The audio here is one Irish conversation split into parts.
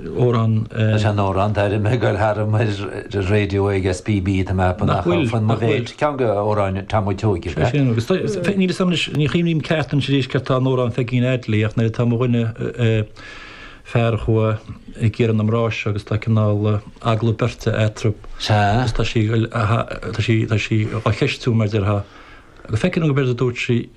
amhrán. Leis an amhrán, d'airigh mé ag goil tharam ar raidió ag SBB tá mé ag ceapadh nach bhfuil fan móiméad, ceann go amhráin Tom a' tSeoighe is ea? Agus tá, níl fhios a'm anois, ní chuimhním ceart anois arís céard tá in amhrán Pheigín Audley ach nuair atá mo dhuine, fear a chuaigh ag iarraidh na mná seo agus tá cineál agallamh beirte eatrab agus tá sí, tá sí, tá sí á cheistiú mar déarfá, go bhfeicfinn go b'éard a dúirt sí.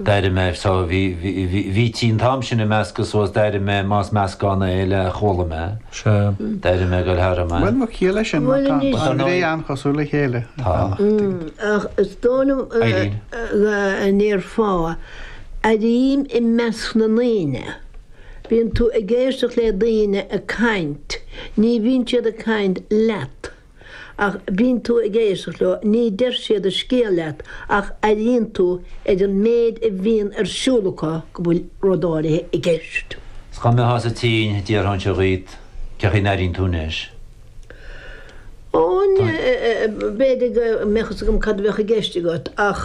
D'airigh mé, so, bhí, bhí, bhí, bhítí an t-am sin ag meascadh suas, d'airigh mé, más meascán é, le chuala mé, d'airigh mé ag goil tharam. Bhuel, mo chiall é sin, má tá an dá ghné an-chosúil le chéile, tá. Ach is dóigh liom go ndéarfá airím i measc na ndaoine. Bíonn tú ag éisteacht le daoine ag caint, ní bhíonn siad ag caint leat. Ach bíonn tú ag éisteacht leo, ní deir siad an scéal leat ach airíonn tú ar an méid a bhíonn ar siúl acu go bhfuil rud áirithe i gceist. Is dá mbeifeása tinn, d'iarrfainnse dhíot cé chaoi a n-airíonn tú anois. Ó, b'fhéidir go mbeadh fhios agam cad a bheadh i gceist agat ach.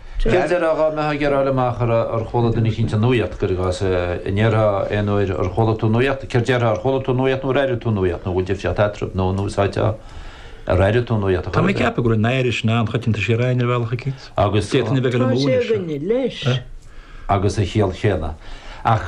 Céard déarfá dhá mbeifeá ag iarraidh fáil amach ar, ar chuala duine eicínt an nuaíocht, cuir i gcás, a' ndéarfá aon uair ar chuala tú nuaíocht, céard déarfá, ar chuala tú nuaíocht nó ar airigh tú nuaíocht nó bhfuil difríocht eatrab, nó, nó an úsáidfeá ar airigh tú nuaíocht a chor ar bith? Tá mé ag ceapadh go bhfuil an airigh sin an-choitianta siar againn ar bhealach eicínt. Agus. D'fhéadfainn a bheith ar a Tá sé múineadh seo. againne, leis. agus an chiall chéanna. Ach.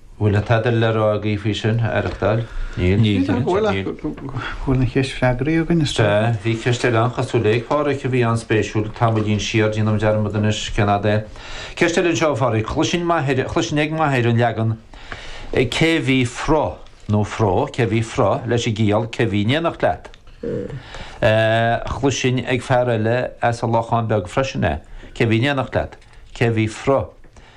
Bhfuil tada le rá agaibh faoi sin? Aireachtáil? Níl? Níl, dar comhairle ach go bhfuil an cheist freagraí againn, is dócha. Sea, bhí ceist eile an-chosúil ag Pádraic a bhí an-spéisiúil tamaillín siar, déanaim dearmad anois cén fhad é. Ceist eile anseo ó Phádraic, chloisinn m'athair, chloisinn ag m'athair an leagan cé bhí fro, nó fró, cé bhí fro leis an gciall cé bhí in éineacht leat. Chloisinn ag fear eile as an Lochán Beag freisin é, cé bhí in éineacht leat, cé bhí fro.